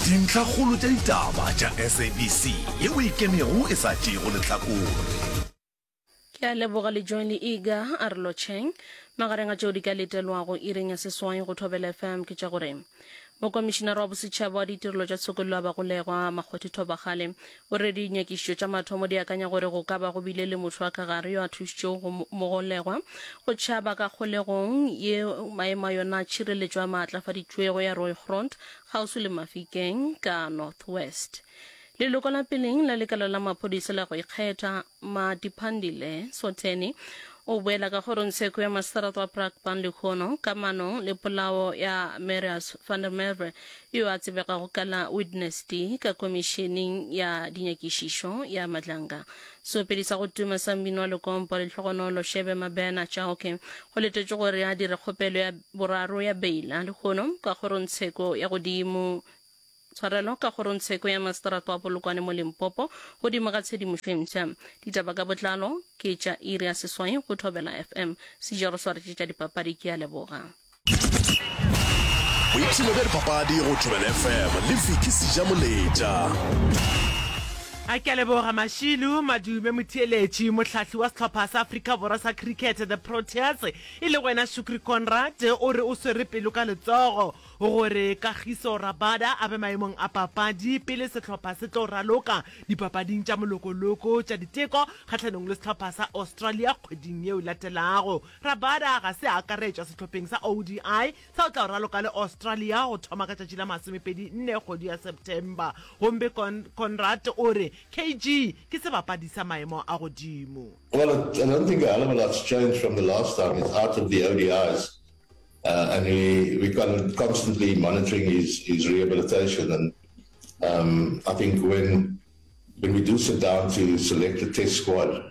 Dintlhakgolo tša ditaba tša SABC ye o e kenego e sa tšeego lehlakore. Ke a leboga le Johnny Ega a re lotšheng. Magareng a tšeo di ka letelwago iring ya seswai go Thobela FM ke tša gore Mokomišinara wa Bosetšhaba wa Ditirelo tša Tshokollo ya Bagolegwa, Makgothi Thobakgale, o re dinyakišišo tša mathomo di akanya gore go ka ba go bile le motho wa ka gare yo a thušitšego mogolegwa go tšhaba ka kgolegong ye maemo a yona a tšhireletšo a maatlafaditšwego ya Rooigrond kgauswi le Mafikeng ka North West. Leloko la peleng la lekala la maphodisa la go ikgetha, Matiphandile Sotheni, o boela ka kgoro ntsheko ya maseterata wa Brakpan lehono ka manong le polao ya Marius van der Merwe yo a tsebegago ka la Witness D ka komišeneng ya dinyakišišo ya Madlanga Seopedi sa go tuma sa mmino wa lekompo, Lehlogonolo Shebe Mabena Chauke, go letetšwe gore a dire kgopelo ya boraro ya beila, lehono ka kgorongtsheko ya godimo tshwarelo ka kgorongtsheko ya maseterata wa Polokwane mo Limpopo, godimo ga tshedimošo e mpsha. Ditaba ka botlalo ke tša iri ya seswai go Thobela FM. Sejaro Swaretše tša dipapadi ke a leboga. boipshino bja dipapadi go tšobela fm le fiki seja moletša a ke leboga mashilu madume motheeletši mohlahli wa sehlopha sa afrika borwa sa cricket the proteas e le wena shukri conrad o re o swere pelo ka letsogo gore kagiso rabada a be maemong a papadi pele sehlopha se tlo raloka dipapading tša molokoloko tša diteko kgahlanong le sehlopha sa australia kgweding yeo latelago Rabada ga se a akaretšwa sehlopheng sa ODI sa o tla o raloka le Australia go thoma ka tšatši la masomepedi nne kgwedi ya September, gomme Conrad o re KG ke sebapadi sa maemo a godimo. Well, I don't think a hell of a lot's changed from the last time he's out of the ODIs and we constantly monitoring his rehabilitation and I think when we do sit down to select the test squad,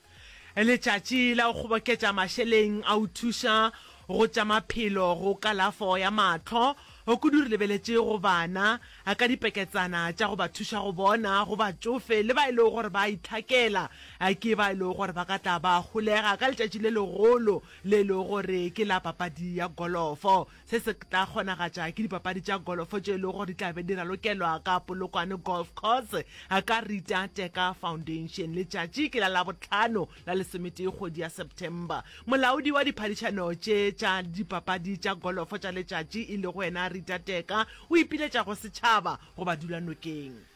Letšatši la go kgoboketša mašeleng a go thuša go tša maphelo go kalafo ya mahlo, kudu re lebeletše go bana ka dipeketsana tša go ba thuša go bona, go batšofe le ba e lego gore ba a itlhakela ke ba e lego gore ba ka tla ba holega ka letšatši le legolo le e lego gore ke la papadi ya golofo. Se se tla kgonagatša ke dipapadi tša golofo tše e lego gore di tla be di ralokelwa ka Polokwane Golf Course ka Rita Teka Foundation. Letšatši ke la Labohlano la lesometee kgwedi ya September. Molaodi wa diphadišano tše tša dipapadi tša golofo tša letšatši e lego yena Rita Teka o ipiletša go setšhaba go ba dula nokeng.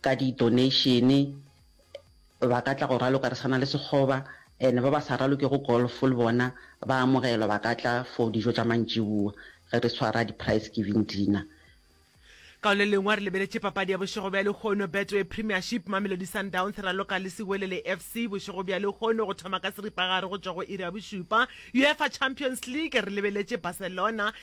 ka di donation ba ka tla go raloka re sana le sekgoba and ba ba sa raloke go golf le bona ba amogelwa ba ka tla for dijo tša mantšiboa ge re swara di price giving dinner. Ka le lengwe re lebeletše papadi ya bošego bja lehono Betway Premiership, Mamelodi Sundowns e raloka le Siwelele FC bošego bja lehono go thoma ka seripagare go tšwa go iri ya bošupa. Uefa Champions League re lebeletše Barcelona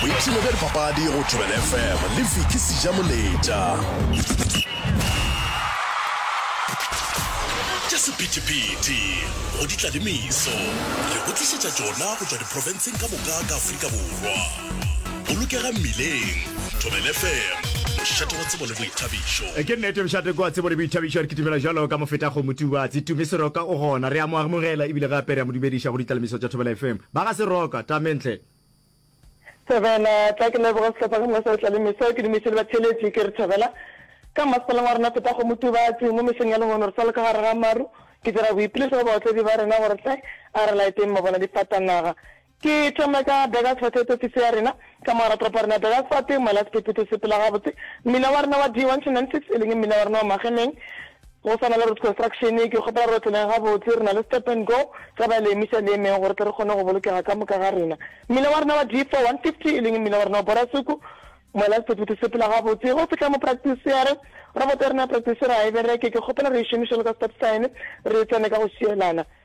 boipshino bja dipapadi go thobela fm le viki seja moletša tša sephetephete go ditlalemiso re go tlišetša tšona go tšwa diprofenseng ka moka ka aforika borwa bolokega mmileng thobela fm mošate wa tsebo le boithabišo ke nnete mošate kwa tsebo le boithabišo re kitimela jalo ka mofeta go motubatsi tumiseroka o gona re a mo amogela ebile gape re a mo dumediša go ditlalemiso tša thobela fm Ba ga se roka, Tamentle. Thobela, Tla ke leboge sehlopha ge Mosadi Tlalemeso, ke dumiše le batheeletši ke re Thobela. Ka mmasepaleng wa rena Phethago Motubatsi, mo mesong ya lehono re sa le ka gare ga maru, ke dira boipiletšo go baotledi ba rena gore tle a re laeteng mabonadifatanaga. Ke thome ka Burgersfort e topise ya rena, ka mogala toropo ya rena Burgersfort, Moela Sephephetho se phela gabotse, mmila wa rena wa D1 Channel 6 e leng mmila wa rena wa Magemeng, Go swana le Root Construction, ke kgopela re otleleng gabotse. Re na le Stop and Go sa balemi sa Leemeng gore tle re kgone go bolokega ka moka ga rena. Mmila wa rena wa D4-150, e leng mmila wa rena wa Borasuku, moela sephethephethe se phela gabotse go fihla mo praktisiere. Roboto ya rena ya praktisiere ga e bereke, ke kgopela re e šomiše jalo ka stop sign, re e tsene ka go šielana.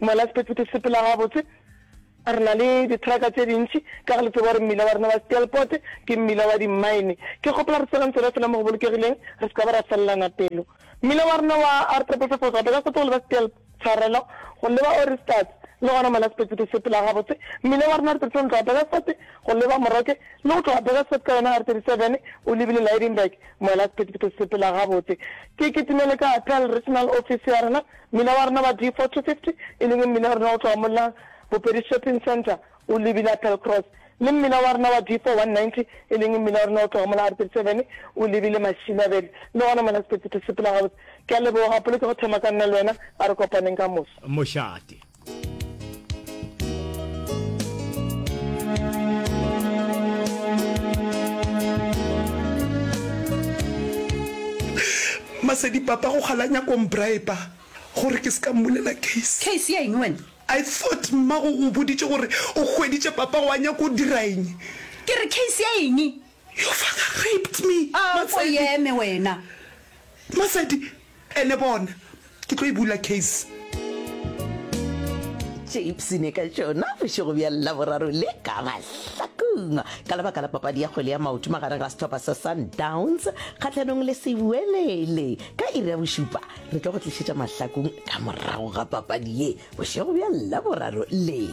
Ngwana Sephetephete sepela gabotse, re na le dithraka tse dintši ka ge le tseba gore mmila wa rena wa Steelpoort ke mmila wa dimmaene. Ke kgopela re tseleng tsela fela mo go bolokegileng re se ka ba ra felelana pelo. Mmila wa rena wa R Triple Five Four Gauteng ka setogo le ba Steel Tshwarelo go leba Oristats le gona Ngwana Sephetephete sepela gabotse, mmila wa rena R Thirty Seven tloga Burgersfort go leba Moroke le go tloga Burgersfort ka yona R Thirty Seven o lebile Lydenburg. Ngwana Sephetephete sepela gabotse. Ke kitimele ka Appel Regional Office ya rena. Mmina wa rena wa D4 250, e leng mmina wa rena go tloga mola Bopedi Shopping Centre, o lebile Applecross, le mmina wa rena wa D4 190, e leng mmina wa rena go tloga mola R37, o lebile Mašilabele, le gona mola Sepetsithi se phela gabotse. Ke a leboga, Polokego Thema ka nna le wena, a re kopaneng ka moso. Mošate. masedi papa go kgalanya kombriba gore ke se ka mmulela case case ya eng wena i thought mmago o boditše gore o hweditše papa wa nyako o dira eng ke re case ya eng your father raped me ah, matsedi wena matsedi Ene bona, ke tlo e bula case. Tše ipshine ka tšona bošego bja Laboraro le ka mahlakong ka lebaka la papadi ya kgwele ya maoto magareng ga sehlopha sa Sundowns kgahlanong le Sewelele. Ka iri ya bošupa re tlo go tlišetša mahlakong ka morago ga papadi ye bošego bja Laboraro le.